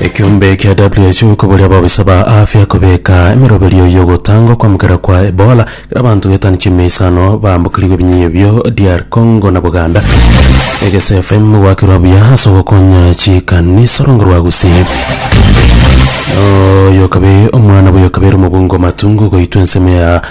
Ekiombe kia WHO koboria ababisa ba afya kobeka emeroberio y'ogotangwa kwamukera kwa Ebola kera abanto getano chiaime isano baambokerigwe ebinyinyo bio DR Congo na Buganda. Egese FM gwakirwa buya ase ogokonya chikanisa orongo rwa Gusii. Oyokabe omwana bw'oyokabe ere omobungo matungu goitwa ensemo ya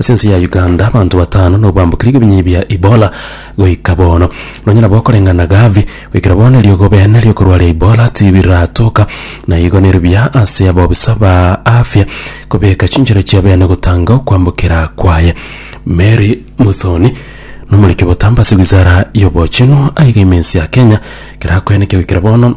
Ase ense ya Uganda abanto batano nigo bambokire ebinyinyi bia Ebola goika bono. Nonya nabo okoreng'ana Gavi, goikera bono eriogo bene riokorwaria Ebola tibiratoka, na igo nere buya ase abobisa ba afya kobeka chinchera chia bene gotanga okwambokera kwaye. Mary Muthoni nomoriki obotambe ase wizara y'obochenu aiga ime ense ya Kenya kerakoeneke goikera bono.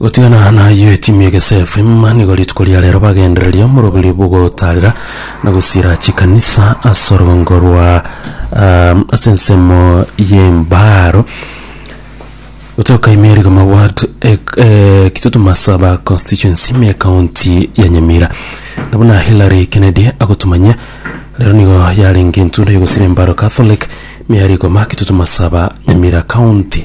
Gotigana naye timu ya Gese FM nigo rituko ria rero bagendereria omorobiri bwogotarera na gosira chikanisa ase orogongo rwa um, ase ensemo y'embaro gotoka imerigo maward eh, kitutu masaba constituency me county ya nyamira nabo na hillary kennedy agotumanyia rero nigo yarenge entunda yogosira embaro catholic me yarigoma kitutu masaba nyamira county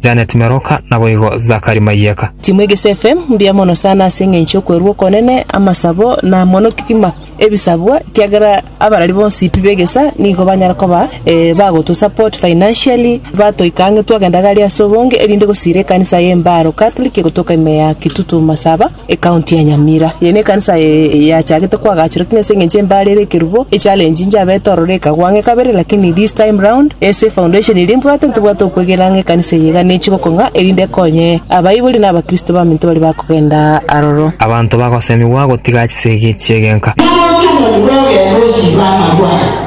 Janet Meroka, naboigo Zakari Maiyeka. Timu Egesefe mbuya mono sana ase engencho y'okwerua okonene, amasabo, na mono kegima ebisabwa, ekiagera abarari bonsi pi b'egesa nigo banyare koba bagotosupport financially, batoika ang'e twagenda gari ase obonge, erinde gosiira ekanisa y'Embaaro Catholic egotoka ime ya Kitutu Masaba. Ekaunti ya Nyamira, eye nekanisa yachagete koagachorwa lakini ase engencho embare ere ekerubo, echallenge njabete ororo ekagwa ang'e kabere lakini this time round ase foundation eria mbwate ntibwate okwegena ng'a ekanisa eye iga nechi gokong'a erinde ekonye abaibori na abakristo baminto baria bakogenda aroro. Abanto bagosemigwa gotiga chisegi chi'egenka. Naro otomoni bw'egeero ochibe amarwaro.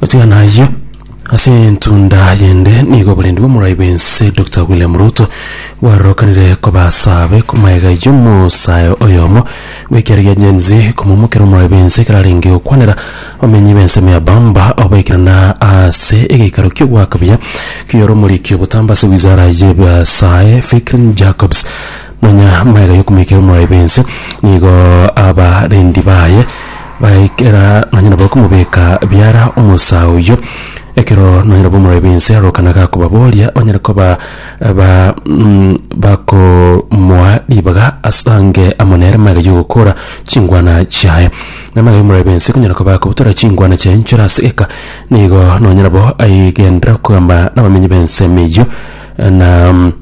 Gotiga nayio, ase entunda yende nigo oborendi bw'omorai bw'ense Dokita William Ruto bwarorokanire koba asaabe komaega y'omosae oyomo bw'ekiaro gia Gen Z komomokera omorai bw'ense ekero arenge gokwanera abamenyi b'ensemo ya Bamba oboikeranu ase egeikaro ki'ogoaka buya ki'oromorikio botamba ase wizara y'ebiasae Fikrine Jacobs nonya maega y'okomoikera omorai bw'ense nigo abarendi baye Baikera nonya nabo okomobeka biara omosa oyio, ekero nonya nabo omorobi bw'ense arokana gakobaboria, banyare koba ba mm, bakomoa ribaga ase ange amo nere magega y'ogokora chingwana chiaye. Na magega y'omorobi bw'ense konyara koba akobutora chingwana chiaye nchore ase eka, nigo nonya nabo aigenderera okogamba nabamenyi b'ensemo eyio, na mm,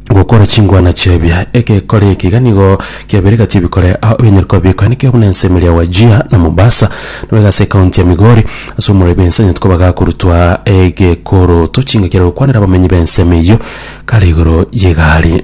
gokora chingwana chi'ebia. Egekore eke iga nigo kiabeire gati ebikore ao ebinyare koba bikoenekeire buna ense emeriri ya Wajir na Mombasa, nabo iga ase ekaunti ya Migori ase omorori bwa ense anyarete koba gakorutwa egekoroto chinga kiare gokwanera abamenyi b'ense ime eyio kare igoro y'egari.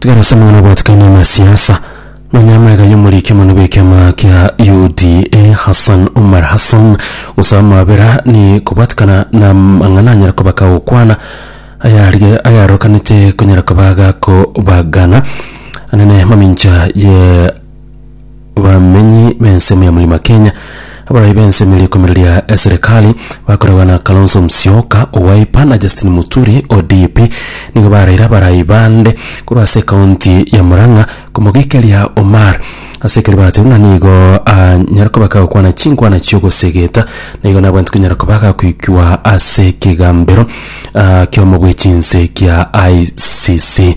Tiga rose mang'ana obwatikanie amasiasa. Nonya amaiga y'omoriki omonene bw'ekiama kia UDA Hassan Omar Hassan gose amabera ni kobwatikana na mang'ana anyare koba kagokwana ayarige ayarokanete konyara koba gakobagana anene mamincha ye bamenyi b'ensemo ya Mlima Kenya abarai b'ensemo ya rikomereria eserikali bakoragwa na Kalonzo Musyoka o Wiper na Justin Muturi o DP nigo baraire abarai bande korwa ase ekaunti ya Murang'a komogicheria Omar ase ekero bateirwe na nigo anyare koba kagokwana chinkwana chi'ogosegeta na igo nabwate konyara koba agakoikwa ase ekegambero ah, ki'omo bw'echinse kia ICC.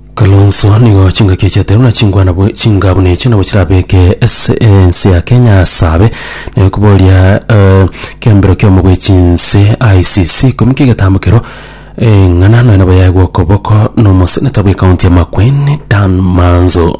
Kalonzo, Nigo chingaki echiateirwe buna chingwana bwe chinga buna echio nabo chirabeke ase ense ya Kenya asabe naye koboria eh, kiambero kiomo bwe chinse ICC komika egetambo kero eng'ana nonya nabo yaegwa okoboko nomoseneta bwe county ya Makueni Dan Manzo.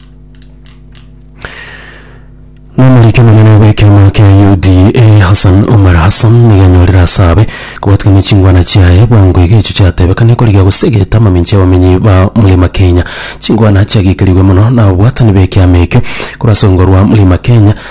Nomorike monene bw'ekiama kia UDA Hassan Omar Hassan nigo anyorire asabe kobatikania chingwana chiaye bwango iga echi chiatebekane korigia gosegeta amamincha y'abamenyi ba murima Kenya. Chingwana chiagikerigwe mono na ababwatani b'ekiama ekio korwa ase orungo rwa murima Kenya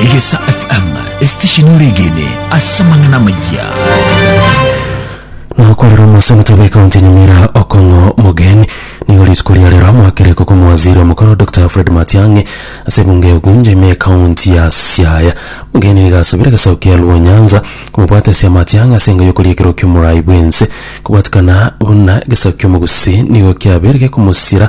Egesa FM, esitesheni oregene ase amang'ana amayia. nokorera omosenete bw'ekaunti ya nyamira okong'o mogeni nigo rituko ria rero amoakire ko komowaziri omokoro dr fred matiang'i ase ebunge ya ugunja ime ekaunti ya siaya mogeni nigo asabire egesaku kia luo nyanza komobwatesia matiang'i ase enga y'okoria ekero kia omorai bw'ense kobwatikana buna egesaku kia omogusii nigo kiabeire gekomosira